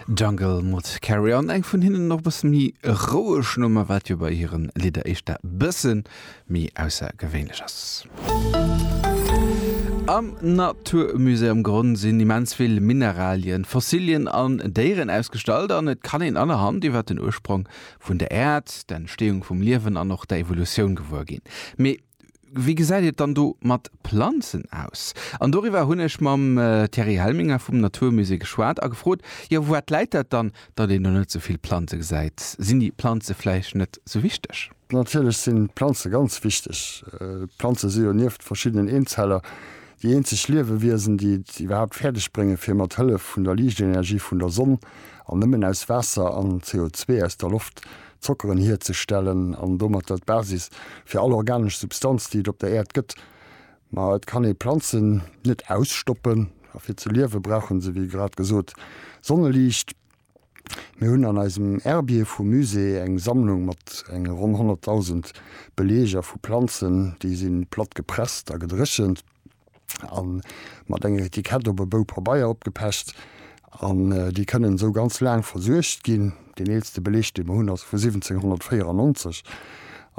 Jungle mat Carry On, eng vun hinnen och e bësse méi roueg Nummer, wat jo bei hiren Lidder éischter e bësse méi aussergewéinlech ass. Am Naturmusée am Gronn sinn immens vill Mineralien, Fossilien an Déieren ausgestallt an et kann een anerhand iwwer den Ursprong vun der Äerd, d'Entsteeung vum Liewen an och der Evolutioun gewuer ginn. Mee Wéi gesäit et dann do mat Planzen aus? An doriwwer hunn ech mam Thierry Helminger vum Natur Musée geschwat a gefrot, jo wourat läit dat dann, datt een do net esou vill Planze gesäit? Sinn déi Planze vläicht net esou wichteg? Natierlech sinn d'Planze ganz wichteg. Planze si jo nieft verschiddenen Eenzeller déi eenzeg Liewewiesen, déi et iwwerhaapt fäerdeg bréngen, fir mat Hëllef vun der Liichtenergie vun der Sonn an nëmmen aus Waasser an CO2 aus der Loft, Zockeren hierzestellen an domatter d'Basis fir all organesch Substanz, déi et op der Äerd gëtt. Ma et kann ee Planzen net ausstoppen a fir ze liewe brauche se, wéi grad gesot, Sonneliicht. Mir hunn an eisem Herbier vum Musée eng Sammlung mat enge ronn 100.000 Beleeger vu Planzen. Déi si platt gepresst a gedréchent. an mat enger Etikett op e Bou Pabeier opgepecht an déi kënnen esou ganz laang versuergt ginn. Deen eelste Beleg dee mer hunn ass vu 1794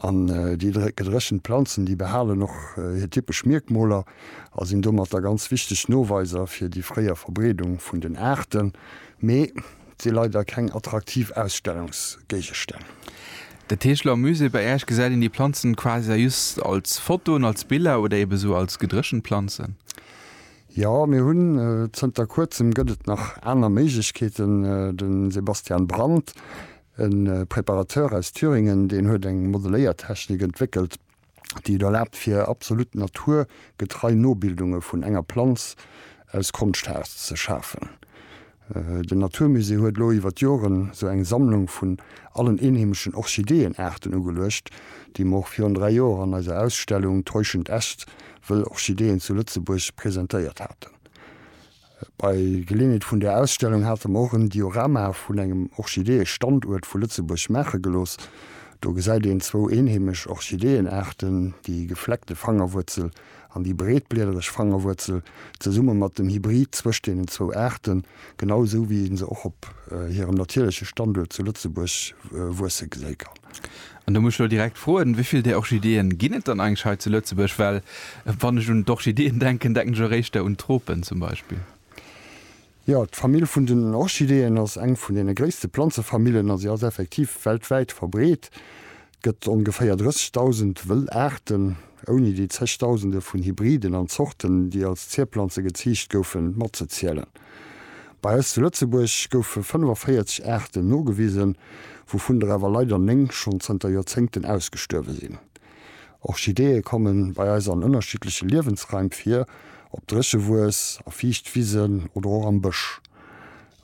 an déi gedréchent Planzen déi behalen och hir typesch Mierkmoler a sinn domatter ganz wichteg Noweiser fir déi fréier Verbreedung vun den Aarten. Mee Et si leider keng attraktiv Ausstellungsgéigestänn. De Tegeler Musée, bei Äerch gesäit een déi Planzen quasi just als Fotoen, als Biller oder eben esou als gedréchent Planzen. Jo, mir hunn, zënter kuerzem gëtt et nach aner Méiglechkeeten. De Sebastian Brandt, e Preparateur aus Thüringen, deen huet eng Modeléiertechnik entwéckelt, déi et erlaabt fir absolut naturgetrei Nobildunge vun enger Planz aus Konschthaarz ze schafen. Den Naturmusée huet elo iwwer d'Joren esou eng Sammlung vun allen eenheemeschen Orchideeënaarten ugeluecht, déi mer och virun 3 Joer an eiser Ausstellung Täuschend Äst, Wëll Orchideeën zu Lëtzebuerg presentéiert haten. Bei Geleeënheet vun där Ausstellung hate mer och en Diorama vun engem Orchideeë-Standuert vu Lëtzebuerg maache gelooss. Do gesäit een zwou eenheemesch Orchideeënaarten, déi gefleckte Fangerwuerzel an déi breetbliedereg Fangerwuerzel, zesumme mat dem Hybrid zwëscht deenen zwou Aarten, genau esou wéi ee se och op hirem natierleche Standuert zu Lëtzebuerg wuesse geséi kann. An do muss ech elo direkt froen, wéi vill där Orchideeën ginn et dann eigentlech hei zu Lëtzebuerg? Well wann ech un d'Orchideeën denken, denken ech och éischter un d'Tropen zum Beispill. Jo, d'Famill vun den Orchideeën ass eng vun deene gréisste Planzefamillen a si ass effektiv weltwäit verbreet. Et gëtt ongeféier 30.000 wëll Aarten, ouni déi Zechdausende vun Hybriden an Zorten, déi als Zierplanze geziicht goufen, matzezielen. Bei eis zu Lëtzebuerg goufe 45 Aarten nogewisen, wouvun der awer leider néng schonn zënter Joerzéngten ausgestuerwe sinn. Orchideeë komme bei eis an ënnerschiddleche Liewensraim vir, op Dréchewues, a Fiichtwisen oder och am Bësch.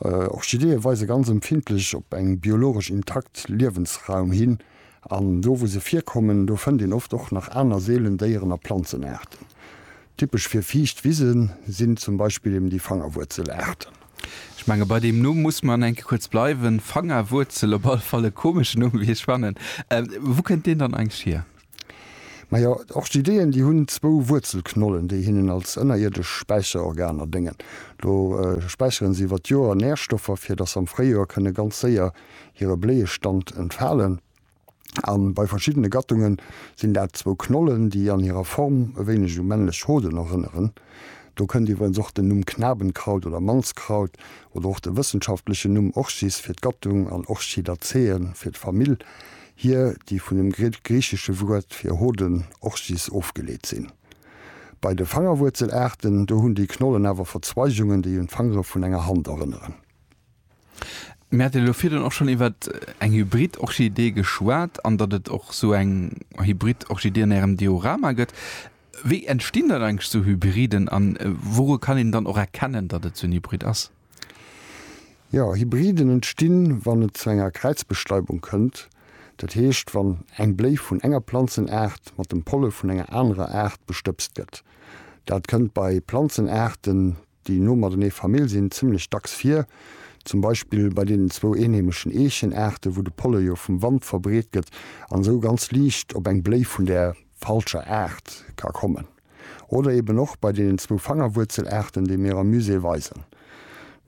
Orchideeë weise ganz empfindlech op eng biologesch intakt Liewensraum hin. An do wou se virkommen, do fënnt een oft och nach aner seelen Déieren a Planzenaarten. Typesch fir fiicht Wise sinn zum Beispill eben déi Fangerwuerzelaarten. Ech menge bei deem Numm muss mer enke kuerz bleiwen. Fangerwuerzel, op alle Fall e komeschen Numm wéi ech fannen. Wou kënnt deen dann eigentlech hier? Majo, d'Orchideeën déi hunn zwou Wuerzelknollen, déi hinnen als ënnerierdesch Späicherorganer déngen. Do späicheren se iwwer d'Joer Närstoffer, fir datt se am Fréijoer kënne ganz séier hire Bléiestand entfalen a bei verschiddene Gattunge sinn dat zwou Knollen, déi an hirer Form e wéineg u männlech Hoden erënneren. Do kënnt iwwerens och den Numm Knabenkraut oder Mannskraut oder och de wëssenschaftlechen Numm Orchis fir d'Gattung an Orchidaceae fir d'Famill hier, déi vun dem griichesche Wuert fir Hoden, Orchis, ofgeleet sinn. Bei de Fangerwuerzelaarten, do hunn déi Knollen awer Verzweigungen, déi un d'Fangere vun enger Hand erënneren. Mir haten elo virdrun och schonn iwwer eng Hybrid-Orchidee geschwat an datt et och esou eng Hybrid-Orchidee an Ärem Diorama gëtt. Wéi entstinn dann eigentlech esou Hybriden a wouru kann een dann och erkennen, datt et esou en Hybrid ass? Jo, Hybriden entstinn, wann et zu enger Kräizbestäubung kënnt, dat heescht, wann eng Bléi vun enger Planzenaart mat dem Polle vun enger anerer Aart bestëbst gëtt. Dat kënnt bei Planzenaarten, Déi no matenee Famill sinn zimmlech dacks vir, zum Beispill bei deenen zwou eenheemeschen Eechenaarten, wou de Polle jo vum Wand verbreet gëtt an esou ganz liicht op eng Bléi vun där falscher Aart ka kommen. Oder eben och bei deenen zwou Fangerwuerzelaarten, déi mir am Musée weisen.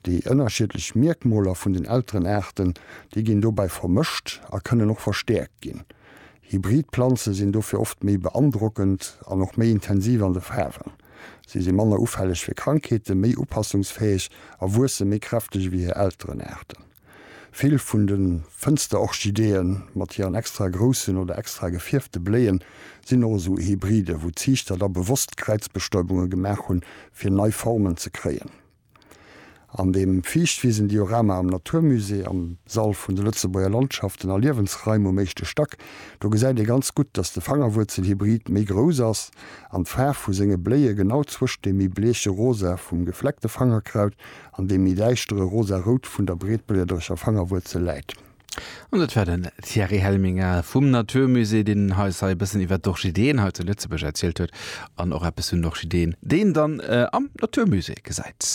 Déi ënnerschiedlech Mierkmoler vun den Elterenaarten, déi ginn dobäi vermëscht a kënnen och verstäerkt ginn. Hybrid Planze sinn dofir oft méi beandrockend an och méi intensiv an de Faarwen. Si si manner ufälleg fir Krankheeten, méi upassungsfäeg a wuesse méi kräfteg ewéi hir Elterenaarten. Vill vun de Fënsterorchideeë mat hiren extra groussen oder extra gefierfte Bléie sinn och esou Hybriden, wou d'Ziichter da bewosst Kräizbestäubunge gemaach hunn, fir nei Formen ze kréien. An dem Fiichtwisen-Diorama am Natur Musée am Sall vun de Lëtzebuerger Landschaften a Liewensraim um éischte Stack, do gesäit ee ganz gutt, datt de Fangerwuerzelhybrid méi grouss ass an d'Faarf vu senge Bléie genau zwëscht dem méi bleeche Rosa vum Gefleckte Fangerkraut an dem méi däischtere Rosa-Rout vun der Breetbliederecher Fangerwuerzel läit. An dat war den Thierry Helminger vum Natur Musée, deen eis hei e bëssen iwwer d'Orchideeën hei zu Lëtzebuerg erzielt huet an och eppes vun den Orchideeën, déi een dann am Natur Musée gesäit.